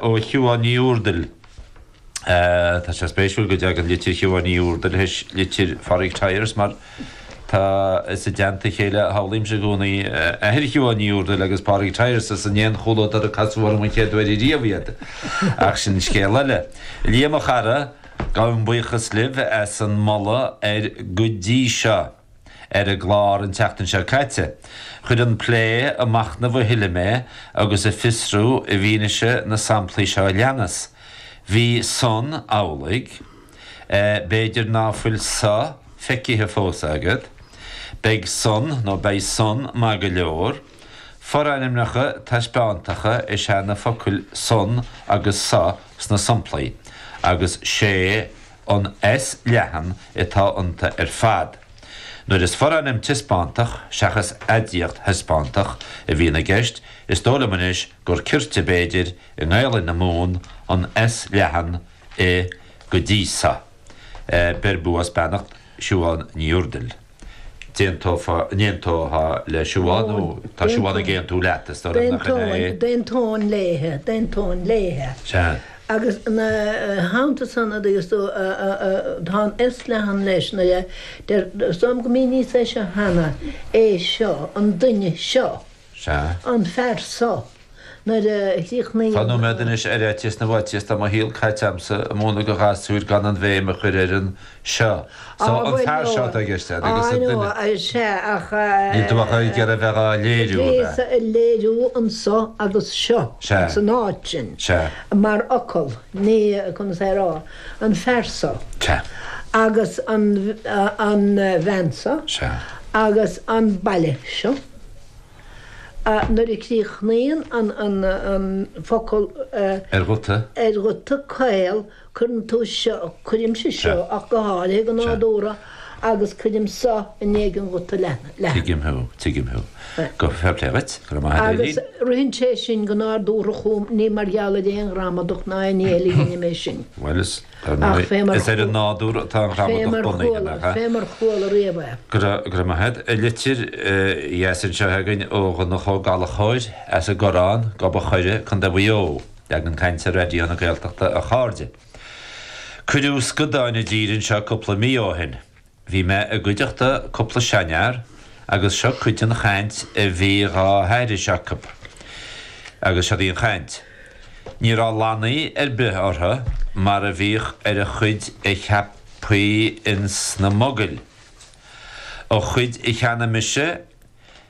Ó Shiobhán Ní Úrdail. Tá sé spéisiúil go dtagann litir Shiobhán Ní Úrdail théis litir Phádraig Tyers mar is i dteannta a chéile a shamhlaímse i gcónaí athair Shiobhán Ní Úrdail agus Pádraig Tyers is i nDún Chaoin dar ndóigh a casadh orm an chéad uair riamh iad. Ach sin scéal eile. Liam a chara, gabhaim buíochas libh as an moladh ar go dtí seo. ar an gclár an tseachtain seo caite. Chuir an plé ag machnamh a thuilleadh mé agus ag fiosrú i bhfianaise na samplaí seo a leanas, Bhí san amhlaidh. B'fhéidir ná fuil so feicithe fós agat. Beidh san nó beidh san maith go leor. Forainmneacha taispeántacha is ea na focail san agus so sna samplaí, agus 'sé, an S leathan atá iontu ar fad. Nuair is forainm taispeántach, seachas aidiacht thaispeántach, a bhíonn i gceist, is dóigh liom anois gur cirte, b'fhéidir, i nGaelainn na Mumhan an S leathan i go dtí so. Beir bua is beannacht Siobhán Ní Úrdail. d'aontófá, n-aontófá, le siobhán, nó tá siobhán ag aontú leat, is dóigh liom nach in é? d'aontóinn léithe, d'aontóinn léithe. Sea. Agus ina theannta san, a dúirt tú, tá an S leathan leis, nuair a deir, dúirt tú liom go mbíonn níos déanaí cheana, é seo, an duine seo. Sea. an fear so. Nuair a chríochnaíonn. Nóiméad anois ar fhaitíos na bhfaitíos tá mo shaol caite agamsa ag múineadh do ghasúir gan an bhéim a chur ar an 'seo'. So, an fear seo atá i gceist agat agus an duine. Á, no, sea, ach. Níl tú ach ag iarraidh a bheith á léiriú, ab ea? Bhíos ag léiriú an 'so' agus 'seo'. Sea. san áit sin. Sea. mar fhocal, ní, conas a déarfá, an fear so. Sea. agus an bhean so. Sea. agus an baile seo. a. Nuair a chríochnaíonn an focal a. Ar ghuta. Ar ghuta caol, cuireann tú seo, cuirimse seo ach go háirithe go nádúrtha, agus cuirim so i ndiaidh an ghuta leathan. Tigim thú, tigim thú. Go, fair play dhuit, go raibh maith agat Eilín. Agus ritheann sé sin go nádúrtha chugam, ní mar gheall ar aon ghramadach ná aon ní eile a dheinim é sin. Bhuel is. Dar ndóigh, is ar an nádúr atá an ghramadach bunaithe, nach ea? Fé mar chuala riamh é. Go raibh maith agat, a Thaidhg. Litir dheas anseo againn ó Dhonncha Ó Gallachóir as an gCorrán, Gob a' Choire, Co. Mhaigh Eo. Leagan cainte Raidió na Gaeltachta, a chairde. Cuireadh scadáin i dtír anseo cúpla mí ó shin. Bhí mé i gcuideachta cúpla seanfhear agus seo cuid den chaint a bhí dhá haithris acu. Agus seod í an chaint. Ní raibh lannaí ar bith orthu mar a bhíodh ar an chuid a cheapfaí ins na mogaill. An chuid a cheannaigh mise,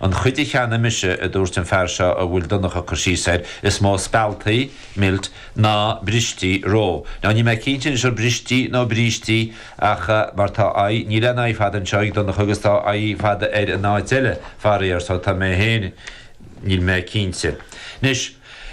An chuid a cheannaigh mise, a dúirt an fear seo a bhfuil Donncha ag cur síos air, is mó spealtaí, milt, ná bristí, roe. Now níl mé cinnte anois ar bristí nó brístí ach mar tá i, níl aon i fada anseo ag Donncha agus tá i fada air in áit eile, faraor, so tá mé féin, níl mé cinnte. Anois,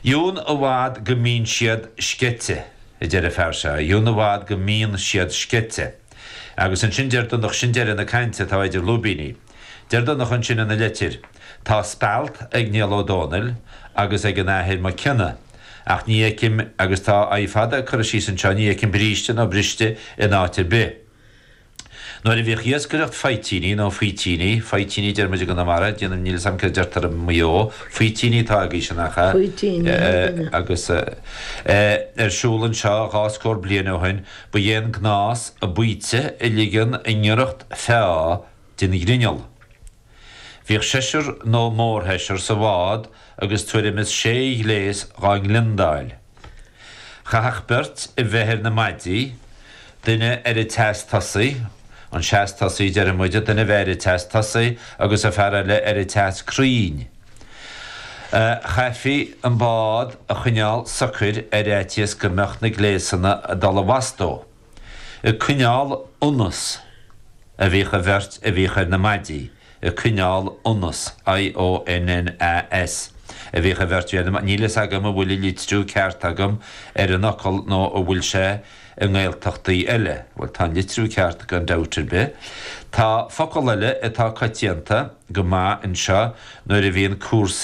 dheamhan i bhfad go mbíonn siad sceite, a deir an fear seo, dheamhan i bhfad go mbíonn siad sceite. Agus ansin deir Donncha, sin deireadh na cainte, tá idir lúibíní. Deir Donncha ansin ina leitir, 'Tá spealt ag Niall Ó Dónaill agus ag an Athair Mac Cionnaith, ach ní fheicim, agus tá i fada curtha síos anseo, ní fheicim bríste nó briste in áit ar bith. Nuair a bhíodh iascaireacht faoitíní, nó faoitíní, faoitíní deir muid i gConamara, déanaim, níl 'fhios a'm céard a deirtear i Maigh Eo, faoitíní atá aigesean ach eh. Faoitíní, thar cionn. agus eh. ar siúl anseo dhá scór bliain ó shin, ba é an gnás an baoite a ligean i ngiorracht feá, den ghrinneall. Bhíodh seisear nó mórsheisear sa bhád agus tuairim is sé ghléas dhá ngliondáil. Chaithfeadh beirt a bheith ar na maidí, duine ar an tseas tosaigh, an seas tosaigh deireadh muid, duine a bheith ar an tseas tosaigh agus an fear eile ar an tseas crainn. Chaithfí an bád a choinneáil socair ar fhaitíos go mbeadh na gléasanna ag dul i bhfastó. ag coinneáil ionnas, a bhíodh an bheirt a bhíodh ar na maidí, ag coinneáil ionnas, I O N N A S, a bhíodh an bheirt a bhí ar na maidí, níl a fhios agam an bhfuil an litriú ceart agam ar an fhocal nó an bhfuil sé i nGaeltachtaí eile, bhuel, tá an litriú ceart gan dabht ar bith. Tá focal eile atá coitianta go maith anseo nuair a bhíonn cúrsaí.